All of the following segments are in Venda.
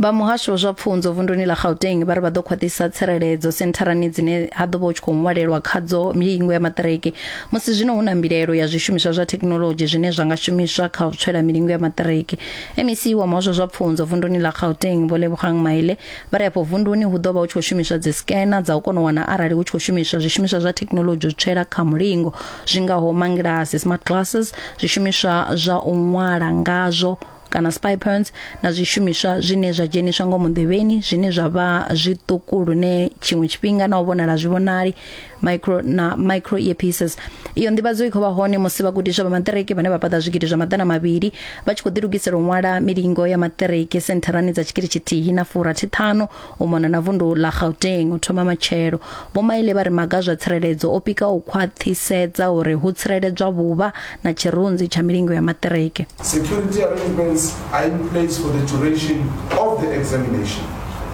vha muhasho wa zwa pfunzo vunduni ḽa gauteng vha ri vha ḓo khwaṱhisa tsireledzo sentharani dzine ha ḓo vha hu tshi khou ṅwalelwa khadzo milingo ya maṱiriki musi zwino hu na mbilaelo ya zwishumiswa zwa thekhinoḽodzhi zwine zwa nga shumiswa kha u tswela milingo ya maṱiriki mec wa muhasho wa zwa pfunzo vunduni ḽa gauteng vho lebogang maile vha ri afho vunduni hu ḓo vha hu tshi khou shumiswa dzisikena dza u kona u wana arali hu tshi khou shumiswa zwishumiswa zwa thekhinoḽodzhi u tswela kha mulingo zwi ngaho mangilasi smart glasses zwishumiswa zwa u ṅwala ngazwo kana spy points na zwishumiswa zwine zwa dzheniswa ngomu nḓevheni zwine zwa vha zwiṱuku lune tshiṅwe tshifhinga na u vhonala zwi vhonali micro na micro earpieces iyo nḓivhadzo i khou vha hone musi vhagudiswa vha maṱiriki vhane vha paḓa zwigidi zwa maḓana mavhili vha tshi khou ḓilugisela u ṅwala milingo ya maṱiriki sentharani dza tshigidi tshithihi na furathi ṱhanu u mona na vundu ḽa Gauteng u thoma matshelo vho maile vha ri maga zwa tsireledzo o pika u khwaṱhisedza uri hu tsireledzwa vhuvha na tshirunzi tsha milingo ya maṱiriki Security arrangements are in place for the duration of the examination.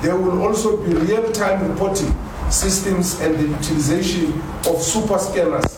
There will also be real-time reporting systems and the utilization of super scanners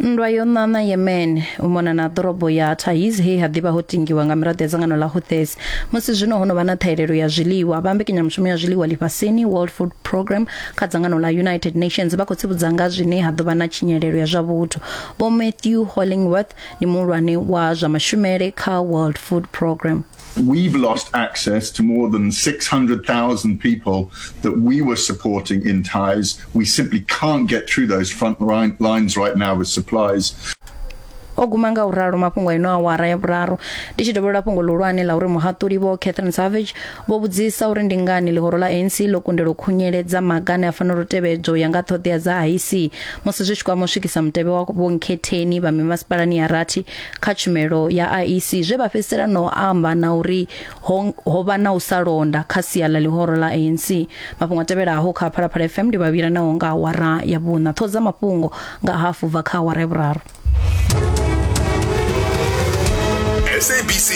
Nndwa yo ṋaṋa Yemen u mona na ḓorobo ya Taiz he ha ḓivha ho tingiwa nga miraḓo ya dzangano ḽa Houthis. Musi zwino ho no vha na ṱhahelelo ya zwiḽiwa, vha mbekanyamushumo ya zwiḽiwa ḽifhasini World Food Programme kha dzangano ḽa United Nations vha khou tsivhudza nga zwine ha ḓo vha na tshinyalelo ya zwa vhuthu. Vho Matthew Hollingworth ndi muhulwane wa zwa mashumele kha World Food Programme. We've lost access to more than 600,000 people that we were supporting in Taiz. We simply can't get through those front line, lines right now with supplies. o guma nga u ralo mafhungo ino awara ya vhuraru ndi tshi dovholola fhungo ḽihulwane ḽa uri muhaṱuli vho catherine savage vho vhudzisa uri ndi ngani ḽihoro ḽa anc ḽo kundelwa u khunyeledza maga ane a fanela u tevhedzwa u ya nga ṱhoḓea dza iec musi zwi tshi kwama u swikisa mutevhe wa vhonkhetheni vha mimasipalani ya rathi kha tshumelo ya IEC zwe vha fhedzisela no amba na uri ho, ho vha na u sa londa kha sia ḽa ḽihoro ḽa ANC mafhungo a tevhelaho kha Phalaphala FM ndi vhavhila naho nga awara ya vhuṋa ṱhoho dza mafhungo nga hafu bva kha awara ya vhuraru SABC